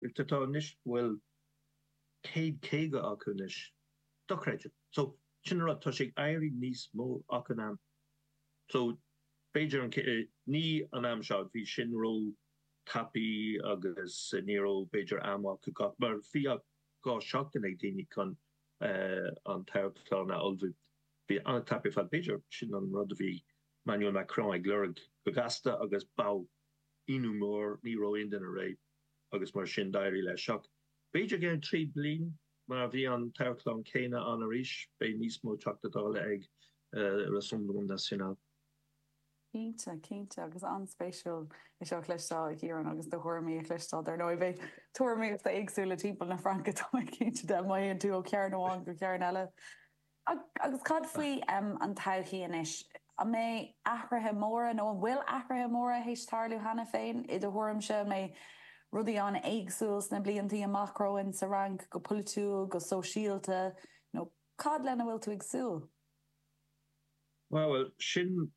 Tá tá anois, bhuel, céad caoga acu anois. Dochreidte. So, sin an rud, tá sé ag éirí níos mó achan am. So, b'fhéidir an, ní an am seo, bhí sin róthapaidh agus ní raibh b'fhéidir am acu gach, mar bhí ach dhá seachtain ag daoine chun an toghchán a ullmhú. Bhí an-tapaidh ar fad, b'fhéidir sin an rud a bhí Emmanuel Macron ag lorg go gasta agus ba ionadh mór, ní raibh aon duine réidh. agus mar sin d'éirigh leis. Ach b'fhéidir i gceann trí bliain mar bhí an toghchán céanna ann arís, beidh níos mó Teachta Dála ag Rassemblement National. Cinnte, cinnte. Agus an-spéisiúil é seo a chloisteáil, a Chiaráin, agus do thuairimí a chloisteáil. Dar ndóigh, beidh tuairimí éagsúla timpeall na Fraince, tá mé cinnte de, má théann tú ó chearn amháin go cearn eile. Agus cad faoi an todhchaí anois? An mbeidh athruithe móra, nó an bhfuil athruithe móra théis tarlú cheana féin, i do thuairimse? An mbeidh rudaí an-éagsúil sna blianta amach romhainn, sa Fhrainc, go polaitiúil, go sóisialta, nó cad lena bhfuil tú ag súil? Bhuel, sin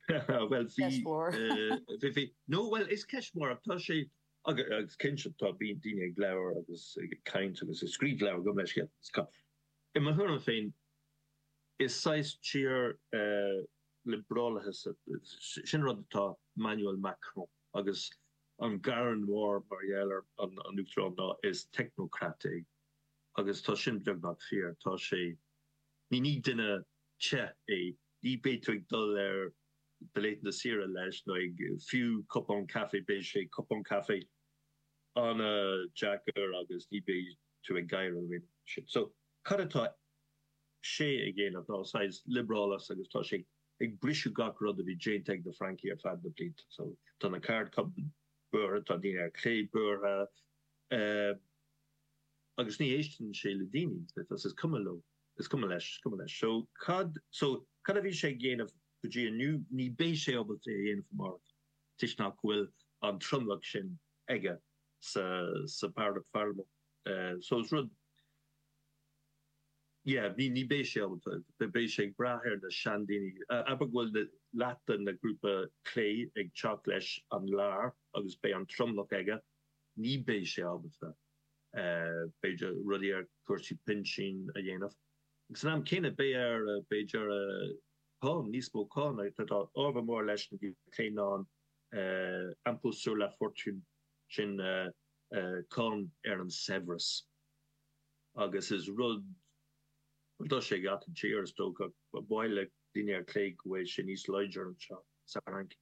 ceist mhór. Bhuel, bhí, bhí, bhí, bhí. No, bhuel, is ceist mhór, ach tá sé. Agus cinnte, tá daoine ag labhair agus ag caint agus ag scríobh leabhar agam leis cheana. I mo thuairim féin, is saghas fíor-liobrálachas é. Sin rud atá Emmanuel Macron agus an gearán mór mar gheall ar an Uachtarán ná, is technocrat é. Agus tá sin beagnach fíor. Tá sé, ní duine te é, ní bheidh tú ag dul ar. laethanta saoire leis, nó ag fiú cupán caife, beidh sé, cupán caife, an-deacair agus ní bheidh tú ag gáire roimhe sin. So, cad atá sé a dhéanamh ná saghas liobrálachas agus tá sé ag briseadh gach rud a bhí déanta ag na Francaigh ar feadh na blianta. So, tá na ceardchumainn buartha, tá daoine ar chlé buartha, agus ní éisteann sé le daoine, is cuma leo. Is cuma leis, is cuma leis. So, cad, so, cad a bhí sé ag dhéanamh go dtí inniu? Ní beidh sé ábalta é a dhéanamh amárach toisc nach bhfuil an tromlach sin aige sa, sa Pharlaimint. So, is rud, yeah, ní, ní beidh sé ábalta, beidh sé ag brath ar na seandaoine, abair go bhfuil leath de na grúpa clé ag teacht leis an lár agus beidh an tromlach aige, ní beidh sé ábalta. b'fhéidir, rudaí ar chúrsaí pinsin a dhéanamh. Agus san am céanna, beidh air, b'fhéidir, cáin, níos mó cáin, atá ábhar mór leis an clé ná an impôt sur la fortune, sin cáin ar an saibhreas. Agus is rud, rud atá sé ag achan tír, is dócha, ba mhaith le daoine ar chlé go bhfuil sé níos láidre anseo sa Fhrainc.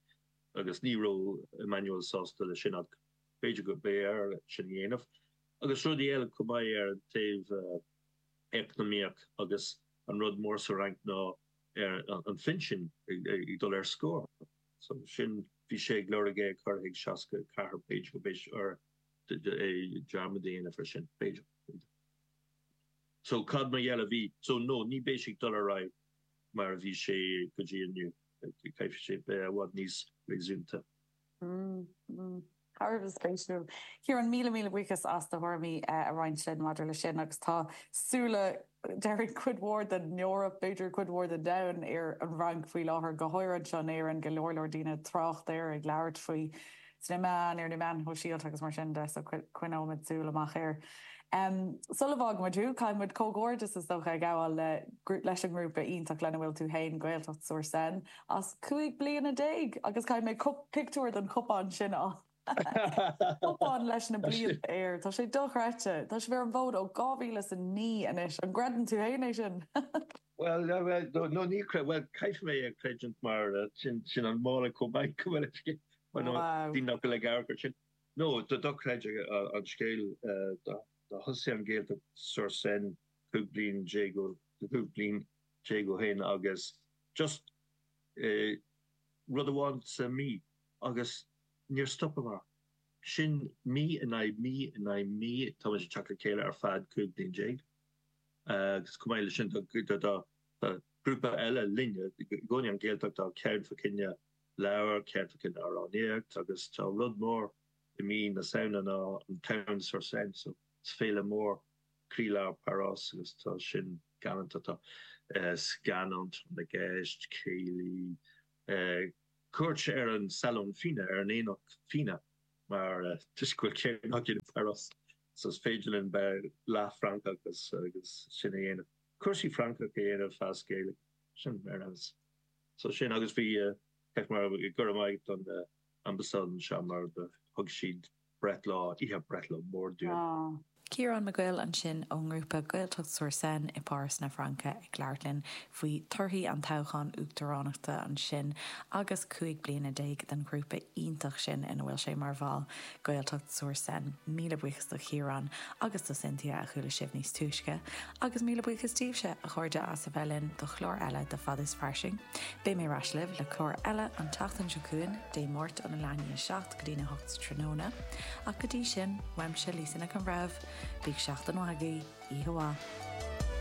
Agus ní raibh Emmanuel sásta leis sin ach. B'fhéidir gurb fhearr sin a dhéanamh agus rudaí eile chomh maith ar an taobh eacnamaíoch agus an rud mór sa Fhrainc ná an pinsean ag dul ar scor. So sin, bhí sé ag lorg é a chur chuig 64, b'fhéidir gurbh fhearr dearmad a dhéanamh ar sin, b'fhéidir. So cad mar gheall ar bhí, so no, ní bheidh sé ag dul ar aghaidh mar a bhí sé go dtí inniu, caithfidh sé bheith i bhfad níos réasúnta. Thar a bheith spéisiúil. Ciarán, míle míle buíochas as do thuairimí a roinnt linn maidir leis sin agus tá súile, déarfainn, cuid mhór den Eoraip, b'fhéidir cuid mhór den domhan, ar an bhFrainc faoi láthair, go háirithe anseo in Éirinn, go leor leor daoine ag trácht air, ag labhairt faoi sna meáin, ar na meáin shóisialta agus mar sin de, so coinneoimid súil amach air. Sula bhfágaimid thú, caithfidh muid comhghairdeas is dócha a ghabháil leis an ngrúpa iontach lena mbaineann tú féin, Gaeltacht-sur-Seine, as cúig bliana déag agus chonaic mé pictiúr den chupán sin, an cupán leis na blianta air. Tá sé dochreidte. Tá sibh ar an bhfód ó dhá mhíle is a naoi anois. An gcreideann tú fhéin é sin? Bhuel, no, ní chreidim, bhuel, caithfidh mé a chreidiúint mar sin an mála chomh maith go bhfuil fhios agat, mar no, bhí mé go le gairid ar sin. No, dochreidte an scéal, do thosaigh an Ghaeltacht sur Seine cúig bliana déag ó, cúig bliana, déag ó shin agus just rud amháin sa mí agus níor stop muid. Sin mí in aghaidh mí in aghaidh mí, tá muid ag teacht le chéile ar feadh 15 bliain agus chomh maith leis sin tá grúpa eile linne, i gcónaí an Ghaeltacht, tá ceann fá choinne leabhar, ceann fá choinne amhránaíocht agus tá rud mór i mí na Samhna ná an tSamhain-sur-Seine, so is féile mór croílár Pháras agus tá sin galánta tá scannáin i gceist, céilí, cuairt ar an salón fíona, ar aonach fíona mar toisc go bhfuil céiliúradh againn i bPáras so is féidir linn bheith leath-Fhrancach agus sin a dhéanamh, cúrsaí Francach a dhéanamh as Gaeilge, sin ar fheabhas. So sin agus bhí, go raibh maith ag an ambasáid anseo mar thug siad breithlá, oíche breithlá mór dúinn. Ciarán Mac Guill ansin ón ngrúpa Gaeltacht-sur-Seine i bPáras na Fraince ag labhairt linn faoi torthaí an toghcháin uachtaránachta ansin agus cúig bliana déag den ghrúpa iontach sin ina bhfuil sé mar bhall, Gaeltacht-sur-Seine. Míle buíochas do Chiarán agus do Cynthia, a chuala sibh níos túisce. Agus míle buíochas daoibhse, a chairde, as a bheith linn do chlár eile de Fada is Fairsing. Beidh mé ar ais libh le clár eile an tseachtain seo chugainn, Dé Máirt óna 7 go dtína hocht sa tráthnóna, ach go dtí sin, uaimse, Lisa Nic an Bhreithimh, bíodh seachtain mhaith agaibh, oíche mhaith.